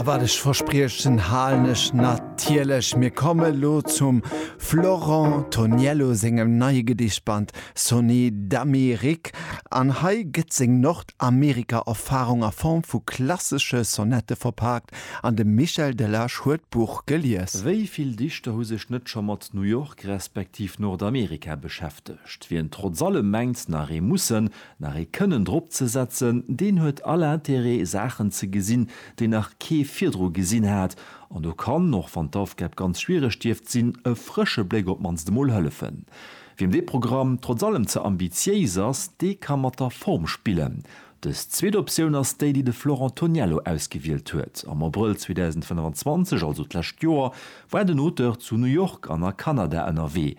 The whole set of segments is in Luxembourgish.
A wat ech verspriechen, halen ech natierlech. Mir komme lo zum Florent Toniello sengem neie Gedichtband Sonnet d'Amérique. An hei gëtt seng Nordamerika-Erfarung a Form vu klassesche Sonette verpaakt an de Michel Delage huet d'Buch gelies. Wéi vill Dichter hu sech net scho mat New York respektiv Nordamerika beschäftegt? Wien trotz allem mengt, nach ee mussen, nach ee kënnen drop ze setzen, deen huet all Intérêt Saachen ze gesinn, déi nach kee virdru gesinn hat, an do kann, och wann d'Aufgab ganz schwiereg dierft sinn, e frësche Bléck op d'mannst emol hëllefen. Wiem dee Programm trotz allem ze ambitiéis ass, dee ka mat der Form spillen. Dës zweet Optioun ass déi, déi de Florent Toniello ausgewielt huet. Am Abrëll 2025, also d'lescht Joer, war den Auteur zu New York an a Kanada ënnerwee.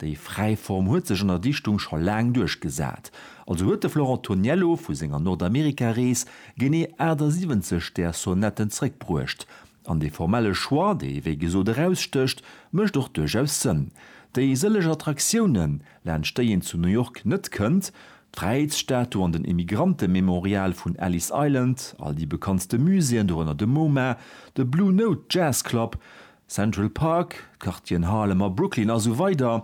Déi fräi Form huet sech an der Dichtung scho laang duerchgesat. Also huet de Florent Toniello vu senger Nordamerika-Rees genee 78 där Sonetten zréckbruecht. An dee formelle Choix, dee wéi gesot erausstécht, mécht och duerchaus Sënn. Déi sëlleg Attraktiounen, laanscht déi een zu New York net kënnt, d'Fräiheetsstatu an den Emigrantememorial vun Ellis Island, all déi bekanntste Muséeën, dorënner de MoMA, de Blue Note Jazz Club, Central Park, d'Quartieren Harlem a Brooklyn a sou weider,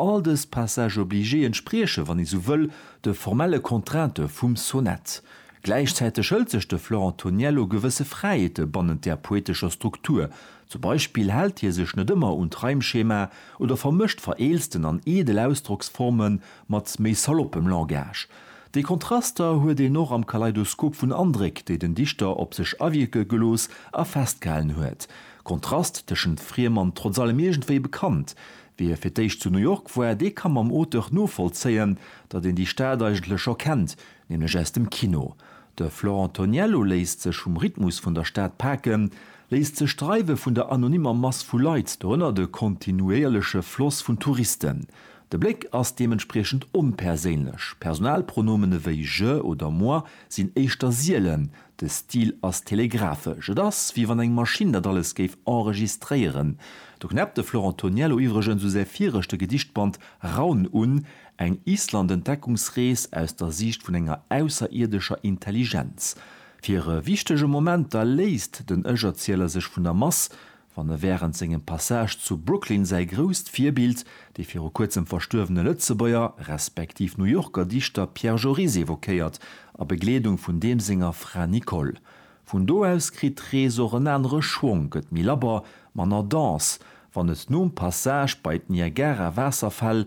all dës Passages obligés entsprieche, wann ee sou wëll, de formelle Contrainte vum Sonett. Gläichzäiteg hëlt sech de Florent Toniello gewësse Fräiheete bannent där poetescher Struktur, zum Beispill hält hie sech net ëmmer un d'Reimschema oder vermëscht vereelzten an eedel Ausdrocksforme mat méi saloppem Langage. Déi Kontraster huet een och am Kaleidoskop vun Andréck, déi den Dichter op sech awierke gelooss a festgehalen huet. Kontrast tëschent friem an trotz allem iergendwéi bekannt. Wie fir d'éischt zu New York war, dee ka mam Auteur novollzéien, datt een déi Stad eigentlech scho kennt, nämlech aus dem Kino. De Florent Toniello léisst sech vum Rhythmus vun der Stad paken, léisst sech dreiwe vun der anonymer Mass vu Leit, dorënner de kontinuéierleche Floss vun Touristen. De Bléck ass deementspriechend onperséinlech, Personalpronomene wéi je oder moi sinn éischter sielen, De Stil ass telegraphesch, et ass wéi wann eng Maschinn dat alles géif enregistréieren. Do knäppt de Florent Toniello iwwregens u säi viregte Gedichtband Raun un, eng Island-Entdeckungsrees aus der Siicht vun enger ausserierdescher Intelligenz. Fir e wichtege Moment da léisst den Ech-Erzieler sech vun der Mass, Wann e wärend sengem Passage zu Brooklyn säi grousst Virbild, dee viru kuerzem verstuerwene Lëtzebuerger, respektiv New Yorker Dichter Pierre Joris evoquéiert, a Begleedung vun deem senger Fra Nicole. Vun do aus kritt d'Rees och en anere Schwong, gëtt méi labber, manner dense, wann et nom Passage bei d'Niagara-Waasserfäll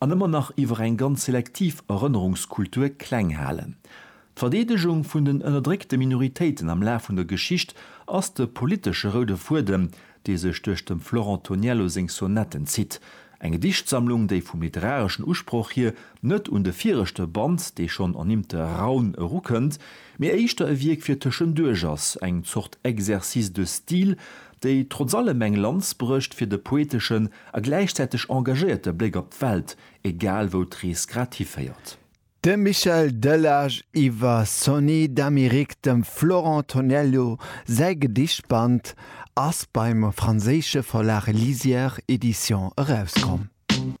an ëmmer nach iwwer eng ganz selektiv Erënnerungskultur kleng halen. D'Verdeedegung vun den ënnerdréckte Minoritéiten am Laf vun der Geschicht ass de politesche roude Fuedem, dee sech duerch dem Florent Toniello seng Sonetten zitt. Eng Gedichtsammlung, déi vum literareschen Usproch hier net un de viregte Band, dee schonn ernimmte Raun, erukënnt, mee éischter e Wierk fir tëschenduerch ass, eng Zort Exercice de style, déi trotz allem eng Lanz brécht fir de poeteschen a gläichzäiteg engagéierte Bléck op d'Welt, egal wou d'Rees grad hiféiert. De Michel Delage iwwer Sony d'Amérique dem Florent Tonello säi Gedichtband ass beim franséische Verlag Lisière Edition erauskomm.